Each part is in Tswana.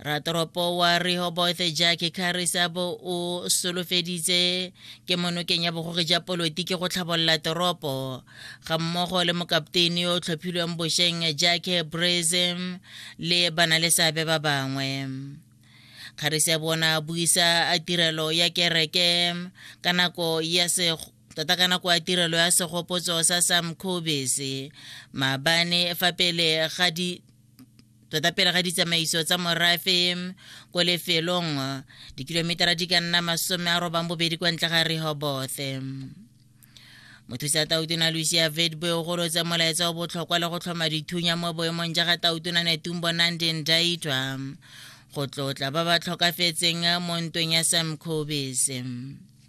ratoropo wa rehoboth jack carisabo o solofeditse ke monokeng ya bogogi ja polotiki go tlhabolola toropo ga mmogo le mokapteini yo o tlhophilweng bošeng jack brazem le bana le seabe ba bangwe kgarisa bona buisa a tirelo ya kereke ka nako ya tota ka nako ya tirelo ya segopotso sa sam cobes maabane fa pele ga di tota pele ga ditsamaiso tsa morafe ko lefelong dikilometara di ka nna masome a robang bobedi kwa ntle ga rehobothe mothusa tautona lucia vedboe o golotsa molaetsa o botlhokwa le go tlhoma dithunya mo boemong ja ga tautona netumbo nandeng daitwa go tlotla ba ba tlhokafetseng mo ntweng ya sam cobis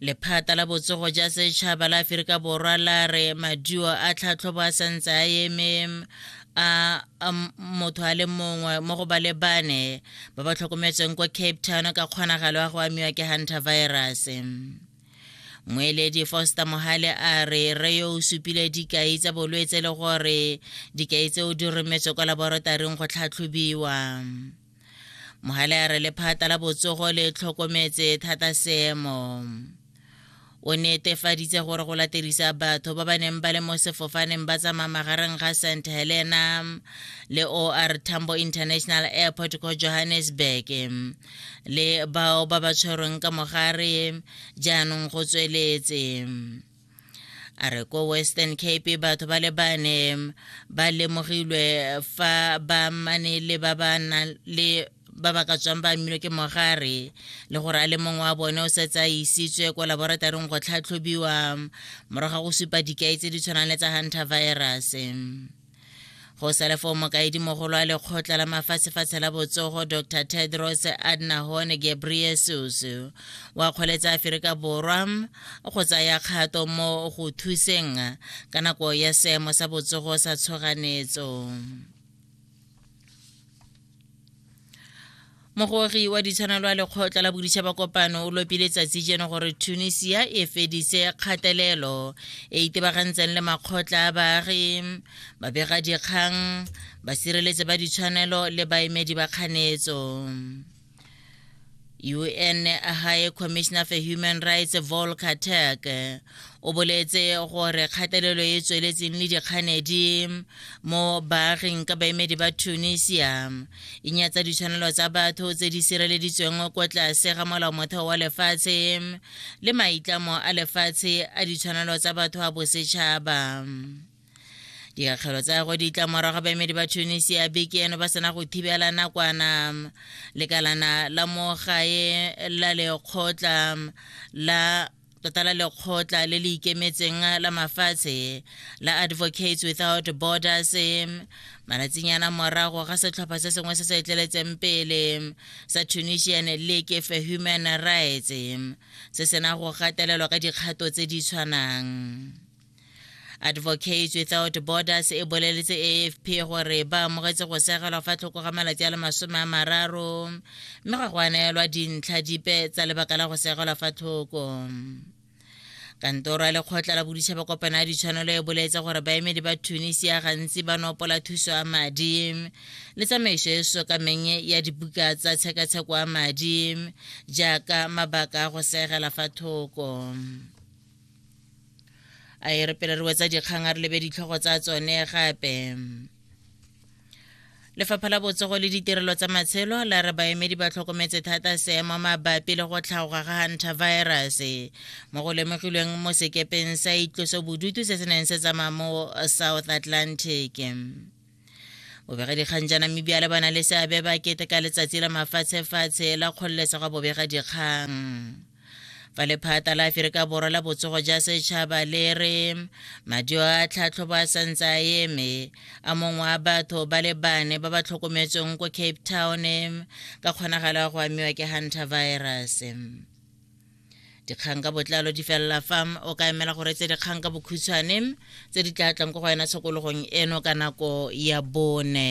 lephata la botsogo ja setšhaba la aferika borwa la re maduo a tlhatlhobo a santse a eme a motho a le mongwe mo go ba le bane ba ba tlhokometsweng kwa cape town ka kgonagalo ya go amiwa ke hunter virus moeledi foster mohale a re re yo o supile dikai tsa bolwetse le gore dikai tseo di rometswe kwa laboratoring go tlhatlhobiwa mogale a re lephata la botsogo le tlhokometse thata seemo o netefaditse gore go laterisa batho ba ba neng ba le mo sefofaneng ba tsamaya magareng ga st helena le or tambo international airport ko johannesburg le bao ba ba tshwerweng ka mogare jaanong go tsweletse a re ko western cape batho ba le bane ba lemogilwe fa ba mane le ba ba nang le ba ba ka tswang ba amilwe ke mogare le gore a le mongwe wa bone o setse a isitswe ko laboratoring go tlhatlhobiwa morago ga go supa dikai tse di tshwanang le tsa hunter virus go sale foo mokaedimogolo a lekgotla la mafatshefatshe la botsogo dr tedros adnahon gebriesus wa kgoletsa aferika borwa go tsaya kgato mo go thuseng ka nako ya seemo sa botsogo sa tshoganetso mogori wa ditshwanelo a lekgotla la boditšhaba kopano o lopile tsatsi jeno gore tunisia e fedise kgatelelo e itebagantseng le makgotla a baagi babegadikgang basireletsi ba ditshwanelo le baemedi ba kganetso un a high commissioner for human rights volker turk o boletse gore kgatelelo e tsweletseng le dikganedi mo baaging ka baemedi ba tunisia e nyatsa ditshwanelo tsa batho tse di sireleditsweng kwa tlase ga molao motheo wa lefatshe le maitlamo a lefatshe a ditshwanelo tsa batho a bosetšhaba dikakgelo tsa go ditla morago baemedi ba tunisia beke eno ba sena go thibela nakwana lekalana la mo gae la lekgotla la tota la lekgotla le le ikemetseng la mafatshe la advocates without borders malatsinyana morago ga setlhopha se sengwe se se etleletseng pele sa tunisian league for human rights se sena go gatelelwa ka dikgato tse di tshwanang advocates without borders e boleletse afp gore ba amogetse go segelwa fa tlhoko ga malatsi a le masome a mararo mme ga go aneelwa dintlha dipe tsa lebaka la go segelwa fa tlhoko kantoro ya lekgotla la boditšhaba kopano ya ditshwanelo e boletse gore baemedi ba tunisia gantsi ba nopola thuso ya madi le tsamaiso e sokameng ya dibuka tsa tshekatsheko ya madi jaaka mabaka a go segela fa thoko a e re pele re wetsa dikgang a re lebe ditlhogo tsa tsone gape lefapha la botsogo le ditirelo tsa matshelo la re baemedi ba tlhokometse thata seemo mabapi le go tlhaoga ga hantavirus mo go lemogilweng mo sekepeng sa itloso bodutu se se neng se tsamaya mo south atlantic bobegadikgang ja namibia le ba na le seabe ba keteka letsatsi la mafatshefatshe la kgololesego bobegadikgang fa lephata la aferika borwa la botsogo ja setšhaba le re madio a tlhatlhobo a santse a eme a mongwe wa batho ba le bane ba ba tlhokometsweng ko cape town ka kgonagalo ya go amiwa ke hunter virus dikgang ka botlalo di felela fa o ka emela gore tse dikgang ka bokhutshwane tse di tla tlang ko go wena tshokologong eno ka nako ya bone